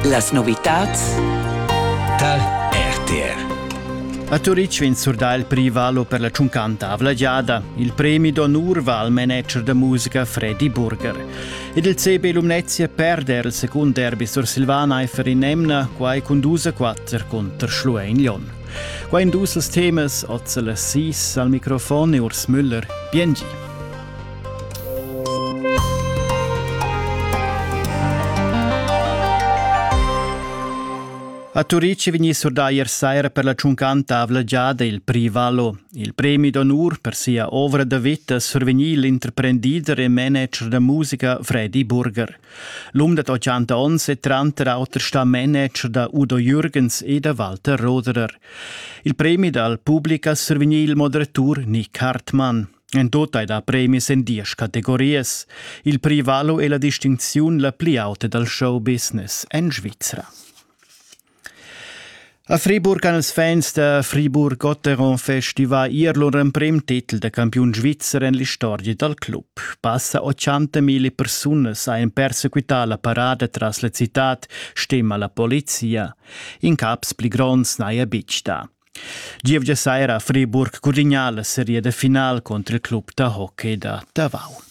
Las novitads tar RTR. A Turitg vegn surdà il prix Valo per la tschuncanta avlagiada. Il premi d'onur va al manager da musica Freddy Burger. Ed il CB Lumnezia perde il secund derby sur Silvaneifer in emna, quai cun dus a quatter contro Schluein Lyon. Qua in dus temas, Ozel Assis al microfon e Urs Müller. Biengi. A Turic è vegnì surdà ier saira per la tschuncanta avlagiada il Prix Valo. Il premi d'onur per sia ovra da vita survegnì l'interprendider e manager da musica Freddy Burger. L'um da 80 onns è tranter auter stà manager da Udo Jürgens e da Walter Roderer. Il premi dal public ha survegnì il moderatur Nick Hartmann. En tot ei da premis en diesch categorias. Il prix valo è la distincziun la pli auta dal show business en Svizra. A Friburg han els fans da Friburg-Gotteron festivà ier lur emprim titel da campiun svizzer en l'istorgia dal club. Passa 80.000 persunas han persequità la parada tras la citad, stima la polizia. In caps pli gronds n'haja betg dà. Gievgia saira Friburg Curignal seria de final contr il club da hockey da Tavau.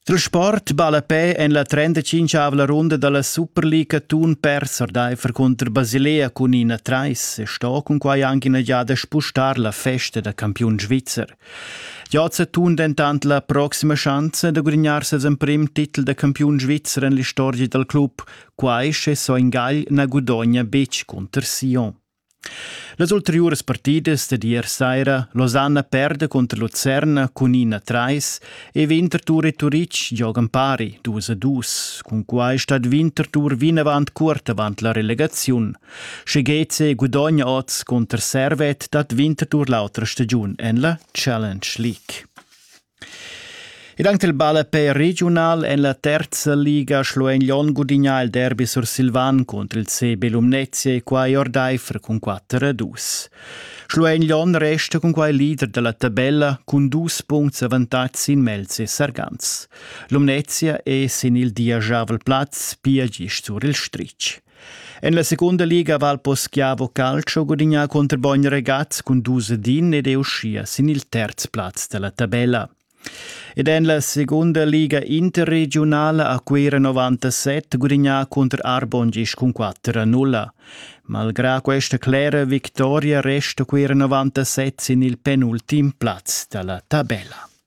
Il sport ballapè en la 35 runda dalla Superliga Thun perser d'Eifer contr Basilea cun ina trais e sto cun quai anche ina giada spustar la festa da campiun svizzer. Giazza Thun dentant la proxima chance da gudignar ses emprim titel da campiun svizzer en l'istorgia dal club, quai sche Soingagl na gudogna betg cunter Sion. Las ulteriuras partidas dad ier saira Losanna perda cunter Lucerna cun 1-3 e Winterthur e Turitg giogan pari 2-2. Cun quai stat Winterthur vinavant cuort avant la relegaziun. Sche Geze gudogna oz cunter Servet dat Winterthur l'autra stagiun en la Challenge League. Ed anche il ballapè regiunal en la terza liga Schluein-Lyon gudigna il derby sursilvan cunter il CB Lumnezia e quai ordaifer cun 4 a 2. Schluein-Lyon resta cun quai leader dalla tabella cun dus puncts avantatg sin Melzi e Sargans. Lumnezia è sin il diajavel plaz pia gist sur il stritg. En la seconda liga Val Poschiavo Calcio gudignà contro Bogn Regaz cun dus din ed è uschia sin il terz plaz della tabella. Ed en la seconda liga interregionala a Cuira 97 gudignà contro Arbontgisch cun 4-0. Malgrà questa clera vittoria resta Cuira 97 sin il penultim plaz della tabella.